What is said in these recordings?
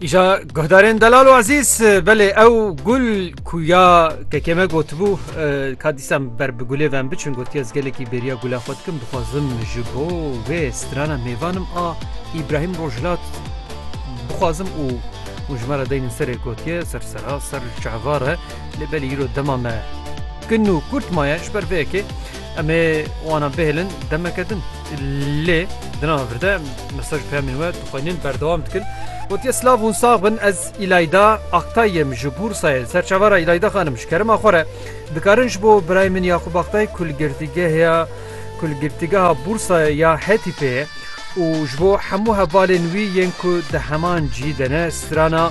Îja guhdarên delal û ezîz belê ew gul ku ya kekeme gotibû ka dîsan ber bi gulê vem biçin gotiye ez gelekî bêriya gula xwe dikim dixwazim ji bo wê strana mêvanim a Îbrahîm Rojhilat bixwazim û û ji me re deynin serê gotiye ser sera ser çehva re lê belê îro dema me kin û kurt maye ji ber vê yekê em ê wana bihêlin demeke din. Lê di nava vir de mesaj û peyamên we tu xwe yên berdewam dikin. Gotiye silav hûn sax bin ez Îlayda Aktay im ji Bûrsayê li ser çavara Îlayda xanim ji kerema xwe re dikarin ji bo birayê min Yaqûb Aktay ku li girtîgeha ku li girtîgeha Bûrsayê ya Hetîfê ye û ji bo hemû hevalên wî yên ku di heman cî de ne strana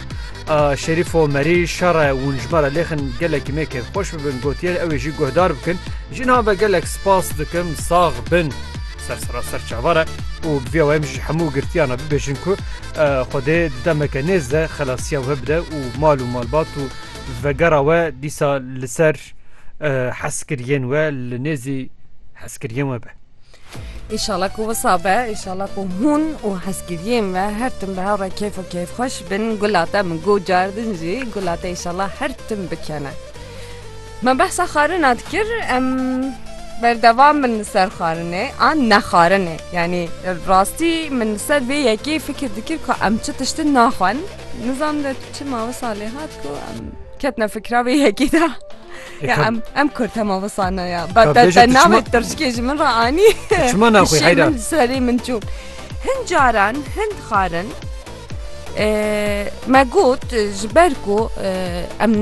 A Şerîfo Merî şere wûnjme re lêxin gelekî me kêfxweş bibin gotiye ew ê jî guhdar bikin. Jinan ve gelek spas dikim sax bin. Ser sera ser çavar e û bi vî awayê em jî ji hemû girtiyan re bibêjin ku Xwedê di demeke nêz de xelasiya we bide û mal û malbat û vegera we dîsa li ser hezkiriyên we li nêzî hezkiriyên we be. Înşallah ku wisa be, înşallah ku hûn û hezkiriyên me her tim bi hev re kêf û kêfxweş bin, gula te min got cardin jî gula te înşallah her tim bikene. Me behsa xarina dikir em berdewam bin li ser xarinê an ne xarinê yanî rastî min li ser vê yekê fikir dikir ku em çi tiştin naxwin nizam de çima wisa lê hat ku em ketine fikra vê yekê de. Ya em em kur tema visana ya. Ba te te navê tirşkê ji min re anî. Çima naxwî heyra? Min serê min çû. Hin caran hin dixarin me got ji ber ku em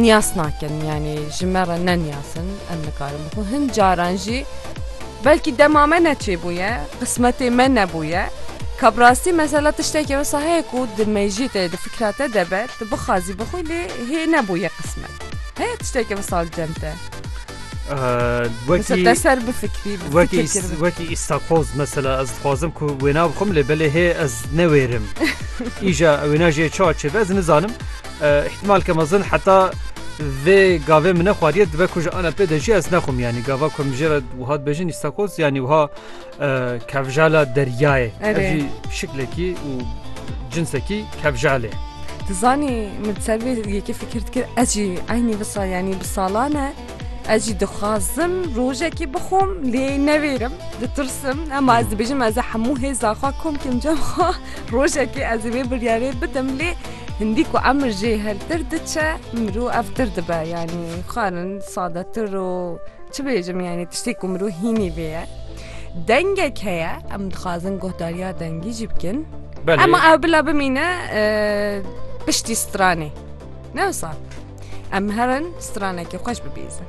niyas nakin yanî ji me re ne niyasin em nikarin bixwe hin caran jî belkî dema me neçêbûye qismetê me nebûye Kabrastî mesela tiştekî wisa heye ku di mejî te di fikra te debe tu bixwazî bixwî lê hê nebûye qismet. Heye tişteke bi sal cem te. Wekî te ser bifikrî wekî wekî îstakoz mesela ez dixwazim ku wêna bixim lê belê hê ez newêrim. Îja wêna jê çawa çêbe ez nizanim. Îhtimal ke mezin heta vê gavê min nexwariye dibe ku ji ana pê de jî ez nexwim yanî gava ku min jê re wiha dibêjin îstakoz yanî wiha Kevjala deryayê ev jî şiklekî û cinsekî kevjalê. Di zanî min ser vê yekê fikir dikir ez jî eynî visa yanî bi salan e ez jî dixwazim rojekî bixwom lê nevêrim ditirsim ema ez dibêjim ez ê hemû hêza xwe kom kim cem xwe rojekê ez ê vê biryarê bidim lê hindî ku emir jê hertir diçe mirov evtir dibe yanî xwarin sadetir û Çi bêjim yanî tiştê ku mirov hînî vê ye. Dengek heye em dixwazin guhdariya dengî jî bikin. Ema ew bila bimîne piştî stranê. Ne wisa. Em herin stranekî xweş bibîzin.